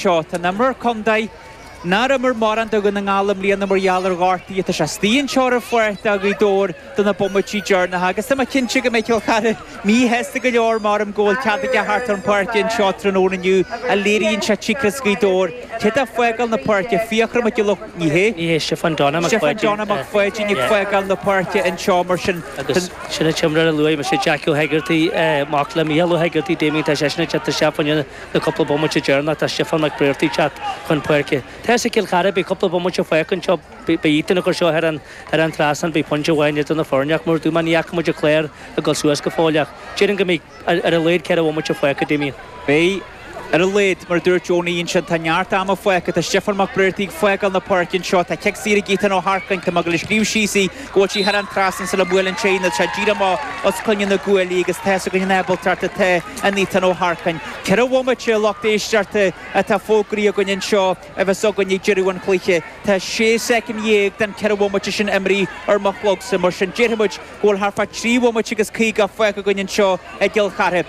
An t-imreoir contae nár imir mórán do Dhún na nGall i mbliana mar gheall ar ghortaí tá sé istigh anseo ar an pháirc do Ghaoth Dobhair do na bomaití deirneacha agus tá mé cinnte go mbeidh Cill Chartha mí-shásta go leor mar go bhfuil cead aige thart ar an pháirc anseo tráthnóna inniu a léiríonn sé tactics Ghaoth Dobhair cé tá fágáil na páirce Fiachra Mac Giolla Ní hé Ní hé Stiofán Donna Mac Stiofán Pháidín Donna Mac Pháidín ag fágáil na páirce anseo mar sin agus sin an t-imreoir a luaigh mise Jackie Ó hEigeartaigh mac le Micheál Ó hEigeartaigh Damien tá seisean ag teacht isteach faoin Le cúpla bomaite deireanach tá Stiofán Mac Briartaigh teacht chun páirce. Tá fhios ag Cill Chartha beidh cúpla bomaite fágtha anseo. Beidh Ethan ag cur seo thar an trasnán beidh pointe amháin idir na foirne ach mar a dúirt mé ní fhaca muid an clár ag dul suas go fóill ach déarfainn go mbeidh ar a laghad ceithre bhomaite fágtha a Damien. Beidh, ar a laghad. Mar a dúirt Owenie ansin tá neart ama fágtha. Tá Stiofán Mac Briartaigh ag fágáil na páirce anseo. Tá cic saor ag Ethan Ó hEarcáin. Tá mé ag dul a scríobh síos í. Go bhfuil sí thar an trasnán sula mbuaileann sé í nó tá seo díreach amach os coinne na gcuaillí agus tá a fhios againn an ábaltacht atá in Ethan Ó hEarcáin. Ceithre bhomaite lucht éisteachta atá fógraithe againn anseo a bheas againn ag deireadh an chluiche. Tá sé soicind dhéag den ceithre bhomaite sin imeartha ar mo chlogsa, mar sin déarfadh muid go bhfuil thart fá trí bhomaite agus caoga fágtha againn anseo i gCill Chartha.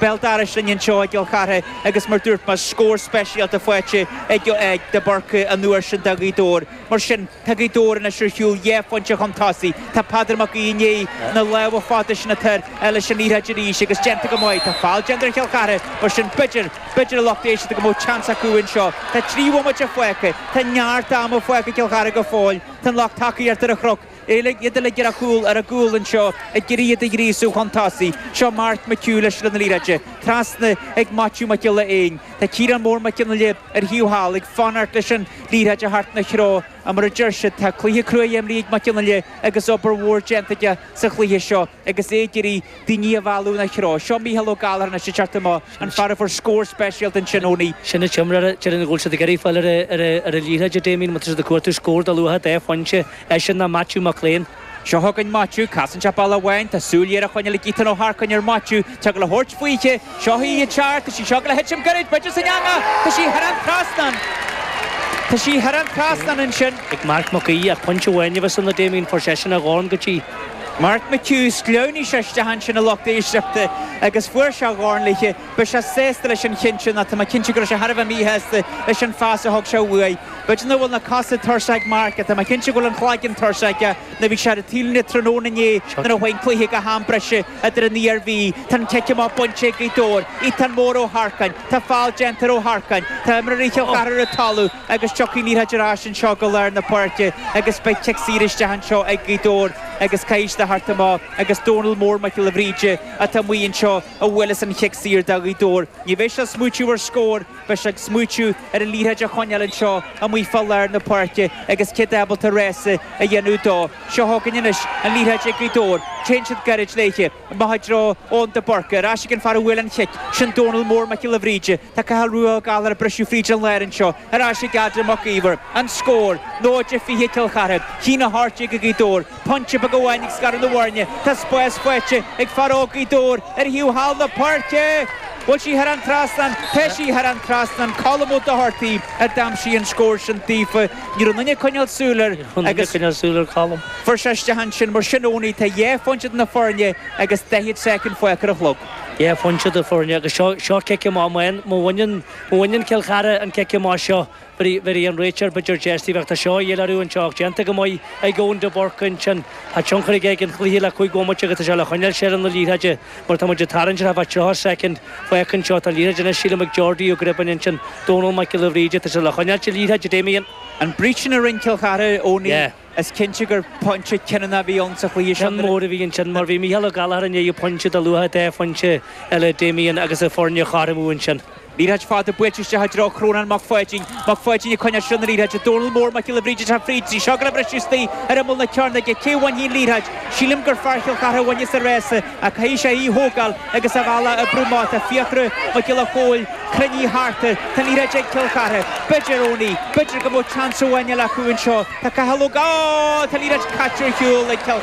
Béal dorais linn anseo i gCill Chartha agus mar dúirt mé scór speisialta faighte ag de Búrca an uair sin do Ghaoth Dobhair. Mar sin tá Gaoth Dobhair anois ar shiúl dhá phointe chun tosaigh. Tá Peadar Mac Aoidh i ndiaidh na lámha fada sin atá air leis an liathróid arís agus déanta go maith. Tá foul déanta ar Chill Chartha mar sin b'fhéidir, b'fhéidir a lucht éisteachta go mbeadh chance acu anseo. Tá trí bhomaite fágtha. Tá neart ama fágtha ag Cill Chartha go fóill. Tá an lucht tacaíochta ar an chnoc. Eile iad uilig ar a chúl ar a gcúl anseo ag iarraidh iad a ghríosú chun tosaigh. Seo Mark McHugh leis an liathróid. Trasna ag Maitiú Mac Giolla Éin. Tá Ciarán Mór Mac Fhionnaile ar an taobh thall ag fanacht leis an liathróid a theacht ina threo. Ach mar a deir siad, tá cluiche cruaidh imeartha ag Mac Fhionnaile agus obair mhór déanta aige sa chluiche seo agus é ag iarraidh daoine a mhealladh ina threo. Seo Mícheál Ó Gallachóir anois, ag teacht amach, an fear a fuair scór speisialta ansin ón. sin an t-imreoir déarfainn go bhfuil siad ag iarraidh fáil ar an liathróid a Damien mar tá siad ag cuartú scór de luach dhá phointe eisean nó Maitiú Mac Giolla Éin. Seo chugainn Maitiú. Casann sé bealach amháin. Tá súil ghéar a choinneáil ag Ethan Ó hEarcáin ar Maitiú. Tá sé ag dul a thabhairt fúithi. Seo í ag teacht. Tá sí seo ag dul a thitim gairid. B'fhéidir san eangaigh. Tá sí thar an trasnán. Tá sí thar an trasnán ansin. ag Marc Mac Aoidh ach pointe amháin a bheas ann a Damien. Fuair seisean a dhorn go dtí. Mark McHugh, Shleamhnaigh sé isteach ansin a lucht éisteachta agus fuair sé a dhorn léithi. Beidh sé sásta leis an cheann sin ach tá mé cinnte go raibh sé thar a bheith míshásta leis an phas a thug sé uaidh. B'fhéidir nach bhfuil na cosa tuirseach ag Mark ach tá mé cinnte go bhfuil an chloigeann tuirseach aige nó bhí sé ar an taobhlíne tráthnóna inné nuair a chuaigh an cluiche go ham breise idir an Iarmhí Tá an cic amach bainte ag Gaoth Dobhair. Ethan Mór Ó hEarcáin. Tá foul déanta ar Ó hEarcáin. Tá imreoirí Chill Chartha ar an talamh. agus tiocfaidh an liathróid ar ais anseo go lár na páirce agus beidh cic saor isteach anseo ag Gaoth Dobhair agus caithfidh siad a thart amach agus Dónal Mór Mac Giolla Bhríde atá amuigh anseo a bhuailfeas an chic saor do Ghaoth Dobhair. Ní bheidh sé ag smaoitiú ar scór, beidh sé ag smaoitiú ar an liathróid a choinneáil anseo amuigh fá lár na páirce agus cé tá ábalta rása a dhéanamh dó. Seo chugainn anois an liathróid ag Gaoth Dobhair, téann siad gairid léithe. Amach i dtreo Eoin de Búrca. Ar ais ag an fear a bhuail an chic. Sin Dónall Mór Mac Giolla Bhríde. Tá Cathal Rua Ó Gallchóir ag briseadh fríd an lár anseo. Ar ais ag Adam Mac Íomhair. An scór. 0-20 Cill Chartha. 1-18 ag Gaoth Dobhair. Pointe beag amháin ag scaradh na bhfoirne. Tá spás faighte ag fear óg Gaoth Dobhair ar thaobh thall na páirce! Bhfuil sí thar an trasnán? Tá sí thar an trasnán. Colm Ó Dochartaigh a d'aimsigh an scór sin daofa. Ní raibh duine ag coinneáil súil ar Colm. Fuair sé isteach ansin mar sin Ónaí tá dhá phointe idir na foirne agus daichead soicind fágtha ar an chlog. Dhá phointe idir na foirne agus seo cic amach amháin. Má bhaineann Cill Chartha an cic amach seo bhéarfaidh an réiteoir b'fhéidir deis bheag tá seo a dhéileáil anseo ach déanta go maith ag Eoin de Búrca ansin. Tá tionchar aige ag an chluiche le cúig bhomaite agus tá sé le coinneáil seilbh na liathróide. Mar tá muid ag tarraingt ar feadh 30 soicind, fágtha anseo, tá an liathróid anois sílim ag Jordi Ó Gribáin ansin, Dónall Mac Giolla Bhríde, tá sé le choinneáilt na liathróide Damien. An breach sin a rinn Cill Chartha Ónaí, is cinnte gur pointe cinniúna a bhí ann sa chluiche sin. Ceann mór a bhí ansin mar bhí Mícheál Ó Gallchóir i ndiaidh pointe de luach dhá phointe eile Damien agus na foirne a chothromú ansin. Liathróid fada buailte isteach i dtreo Chrónáin Mac Pháidín. Mac Pháidín ag coinneáil seilbh na liathróide. Dónal Mór Mac Giolla Bhríde sa fríd tá sí ag gabháil a bhriseadh istigh ar imeall na cearnóige. Cé bhainfidh an liathróid? Sílim gur fear Chill Chartha a bhainfeas an rása ach caithfidh sé í a thógáil agus a bhealach a bhrú mar tá Fiachra Mac Giolla Chomhaill cruinnithe thart air. Tá an liathróid ag Cill Chartha. B'fhéidir, Ónaí, b'fhéidir go mbeadh chance amháin eile acu anseo. Tá Cathal Ó Tá an liathróid caite ar shiúl ag Cill.